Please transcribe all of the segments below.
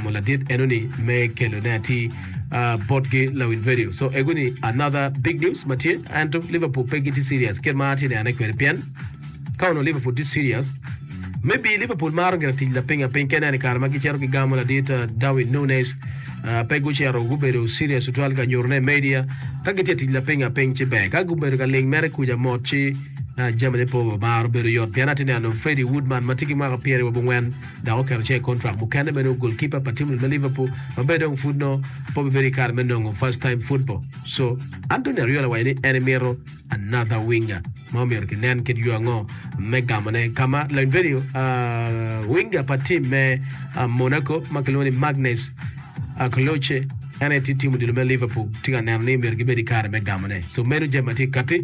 Mo ladit eno ni me kelo ne atir uh, bot gi lawin radio. So ego ni another big news ma tye ento Liverpool pe giti serious kit ma atye nene kwede pien ka ono Liverpool ti serious maybe Liverpool maro gira tic lapinga piny kene ni kare ma gicero gigamo ladit uh, Darwin Nunes uh, pe gucero gubedo serious tutwal ka nyuto ne media ka gitye tic lapinga piny ci ber ka gubedo ka ling mere kuja mot ci uh, jamine po maro bedo yot pien atye neno Freddie Woodman ma tye ki mwaka pyeri wa bongwen dok oketo cinge i kontrak mukene me nongo golkipa pa tim lweny me Liverpool ma bene dong pud nongo pe obibedo ki kare me nongo first time football. Co. Anthony Ariola waco ni en mito another winger ma omyero kinen kit yo ango me gamone ka ma lainfenyo winger pa tim me Monaco ma kilwongo ni Magnus Akloche en aye tye tim odilo me Liverpool tye ka neno ni myero gibed ki kare me gamone. Co. Meno jami ma tye kati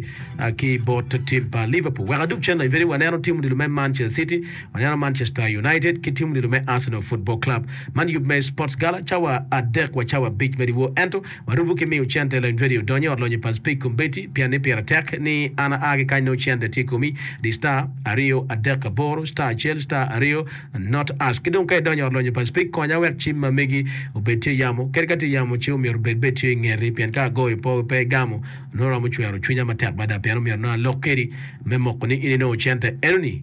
ki bot tim pa Liverpool. Wek adub cen lainfenyo waneno tim odilo me Manchester City. Aneno Manchester United ki tim nino me Arsenal Football Club. Man yub me Sports Gala, cawa adek wa cawa abic me dyewor. Ento, warubo ki miyo cente lony radio odony i ot lonyo pa Speke Combeti pian ni pire tek ni an aa ki kany nongo cente tye i komi. Di star, aryo, adek, aboro, star acel, star aryo, not ask. Ki dong ka idonyo i ot lonyo pa Speke, konya wek cim ma amegi obed tye yamo. Kadi ka tye yamo, ci omyero obed bene tye i ngeti pien ka agoyo po pe igamo, nongo romo cwero cwinya matek mada pien omyero nongo alok kedi me moko ni in inongo cente enoni.